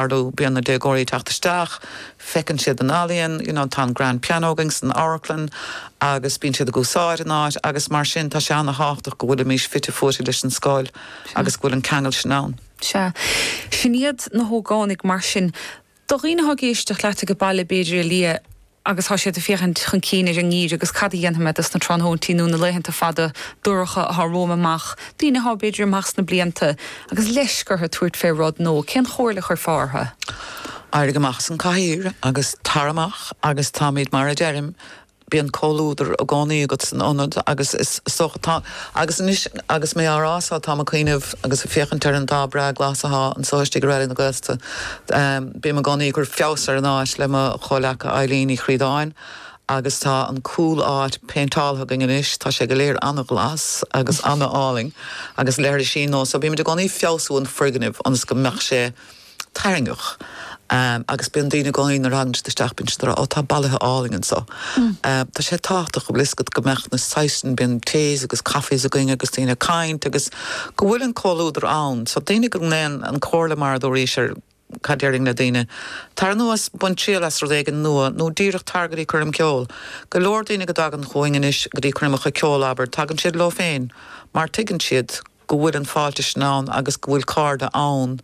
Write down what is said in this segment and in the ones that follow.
Ar ndóigh bíonn na déagóirí ag teacht isteach, feiceann siad an ealaíon, you know, tá an grand piano againn san amharclann agus bíonn siad ag úsáid an áit agus mar sin tá sé an-tábhachtach go bhfuilimís fite fuaite leis an scoil agus go bhfuil an ceangal sin ann. Sea. Sin iad na hógánaigh mar sin. Do dhaoine atá ag éisteacht leat ag an baile b'fhéidir, a Liadh, agus tá siad ag féachaint chun cinn ar an ngeimhreadh agus cad a dhéanfaimid ins na tráthnóintí nó na laethanta fada dorcha atá romham amach, daoine atá, b'fhéidir, amach sna blianta agus leisc orthu tabhairt fé rud nó eile, cén comhairle a chuirfeá orthu? Éirigh amach as an cathaoir agus tar amach agus táimid mar a deirim, bíonn comhluadar i gcónaí agat san ionad agus is dócha, tá, agus anois agus mé á rá so, táim ag cuimhneamh agus ag féachaint ar an dath breá glas atá anso istigh i Raidió na Gaeltachta, Bím i gcónaí ag cur feabhas ar an áit le mo chomhleacaí Eileen Ní Chríodáin agus tá an cúl áit péinteáltha againn anois. Tá sé go léir an-ghlas agus an-álainn agus leithrisí nua so bímid i gcónaí ag feabhsú an foirgnimh ionas go mbeadh sé tarraingeach agus bíonn daoine i gcónaí nuair a thagann siad isteach bíonn siad ag rá 'Ó tá bolaithe álainn anseo'. Tá sé tábhachtach go bhfuil a fhios agat go mbeadh na saghsanna, bíonn teas agus caife againn agus daoine ag caint agus. go bhfuil an comhluadar ann. So daoine go ndéan an comhairle mar a dúraís ó, cad déarfainn le daoine. Tar anuas, bain triail as rud éigin nua nó díreach tar go dtí coirm ceoil. Go leor daoine go dtagann chugainn anois go dtí coirmeacha ceoil, abair, tagann siad leo féin mar tuigeann siad go bhfuil an fáilte sin ann agus go bhfuil cairde ann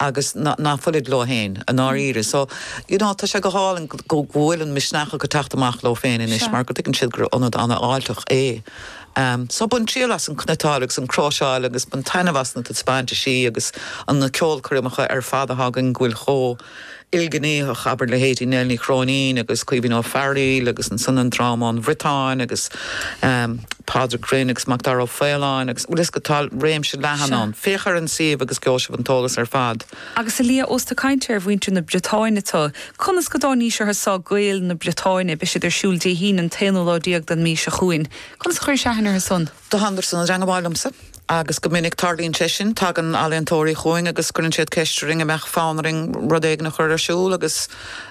agus ná fuilid leo féin i ndáiríre. So, you know, tá sé go hálainn go bhfuil an misneach acu teacht amach leo féin anois mar go dtuigeann siad gur ionad an-fháilteach é. So, bain triail as an chniotáil agus an chróiseáil agus bain taitneamh as na taispeántisí agus na ceolchoirmeacha ar fad a thagann go bhfuil chomh ilghnéitheach, abair leithéidí Nell Ní Chróinín agus Caoimhín Ó Fearghail agus ansan an dráma ón mBriotáin agus Pádraic Rynne agus Macdara Ó Faoláin agus you know so tá réimse leathan ann. Féach ar an suíomh agus gheobhaidh sibh an t-eolas ar fad. Agus a Liadh, ós ag caint ar mhuintir na Briotáine tú, conas go dtáinís orthu san, Gaeil na Briotáine? Beidh siad ar siúl Dé hAoine an t-aonú lá déag den mhí seo chugainn. Conas a chuiris aithne orthu san? do thánadar san i dteangmháil liomsa agus go minic tarlaíonn sé sin, tagann ealaíontóirí chugainn agus cuireann siad ceist oraibh an mbeadh fonn oraibh rud éigin a chur ar siúl agus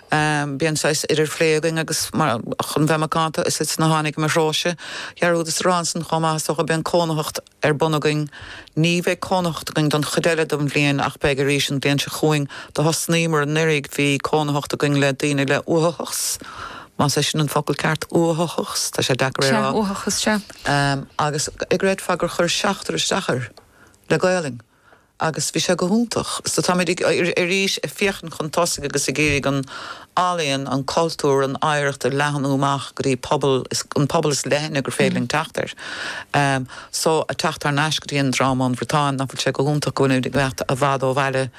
bíonn saghas idirphlé againn agus mar chun bheith macánta is iad a tháinig i mo threo-sa dhearúdas a rá ansan chomh maith is dócha bíonn cónaitheacht ar bun againn ní bheidh cónaitheacht againn don chuid eile don bhliain ach beidh arís an bhliain seo chugainn do thosnaíomar anuraidh bhí cónaitheacht againn le daoine le uathachas más é sin an focal ceart uathachas tá sé deacair é a rá uathachas sea. agus an gcreidfeá gur chuir seachtar isteach air le Gaolainn agus bhí sé go hiontach. So táimid ag, arís, ag féachaint chun tosaigh agus ag iarraidh an ealaín, an cultúr, an oidhreacht a leathnú amach go dtí pobal, an pobal is leithne gur féidir linn teacht air. So ag teacht thar n-ais go dtí an dráma ón mBriotáin, nach bhfuil sé go hiontach go bhfuilimid ag imeacht i bhfad ó bhaile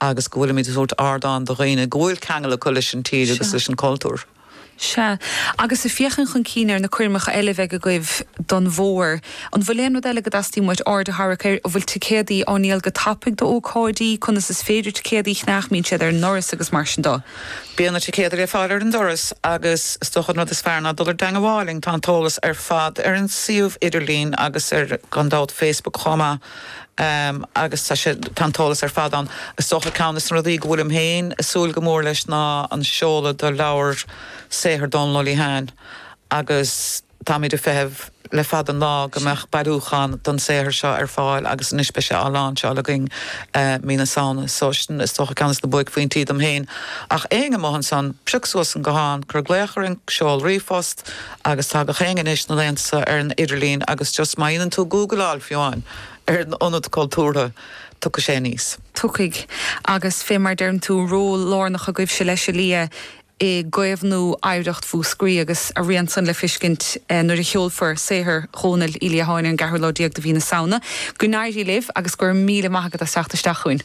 agus go bhfuilimid ag tabhairt ardán do dhaoine go bhfuil ceangal acu leis an tír agus leis an cultúr. Sea, agus ag féachaint chun cinn ar na coirmeacha eile a bheidh agaibh don bhfómhar, an bhfuil aon rud eile go dteastaíonn uait aird a tharrac air? An bhfuil ticéadaí á ndíol go tapaidh d'ócáidí? Conas is féidir ticéadaí a cheannach mbíonn siad ag an ndoras agus mar sin de? Bíonn na ticéadaí le fáil ar an doras agus is dócha an rud is fearr ná dul i dteangmháil linn. Tá an t-eolas ar fad ar an suíomh idirlín agus ar, gan dabht, Facebook chomh maith. agus tá sé, tá an t-eolas ar fad ann. Is dócha ceann des na rudaí go bhfuilim féin ag súil go mór leis ná an seoladh de leabhar saothar Dhónaill Uí Liatháin agus táimid ag feitheamh le fada an lá go mbeadh bailiúchán den saothar seo ar fáil agus anois beidh sé á láinseáil againn mí na Samhna so sin is dócha ceann des na buaicphointí dom féin. Ach éinne amuigh ansan, pioc suas an guthán, cuir glaoch orainn, seol ríomhphost, Agus tá gach éinne anois ina lántaithí ar an idirlíon agus just má dhéanann tú gúgaláil fiú amháin ar an Ionad Cultúrtha tiocfaidh sé aníos. Tiocfaidh. Agus fé mar deireann tú, ról lárnach agaibhse leis a Lia i gcaomhnú oidhreacht Mhúscraí agus a rian san le fiscint nuair a sheolfar saothar Dhónaill Uí Liatháin ar an gceathrú lá déag de mhí na Samhna. Go n-éirí libh agus go raibh míle maith agat as teacht isteach chugainn.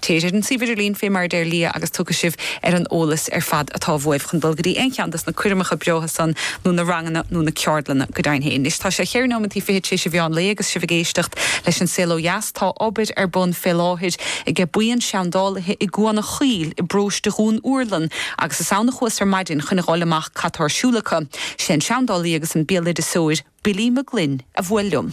Téigí ar an suíomh idirlín fé mar a deir Lia agus tiocfaidh sibh ar an eolas ar fad atá uaibh chun dul go dtí aon cheann dos na coirmeacha breátha san nó na ranganna nó na ceardlanna go deimhin féin. Anois tá sé cheithre nóimeantaí fichead tar éis mheán lae agus sibh ag éisteacht leis An Saol Ó Dheas. Tá obair ar bun fé láthair aige buíon seandálaithe i gCuan a' Chaoil i bpróiste Dhún Úrlann agus is ann a chuas ar maidin chun a fháil amach cad tá ar siúl acu. Sé an seandálaí agus an béaloideasóir Billy Mag Fhloinn a bhuail liom.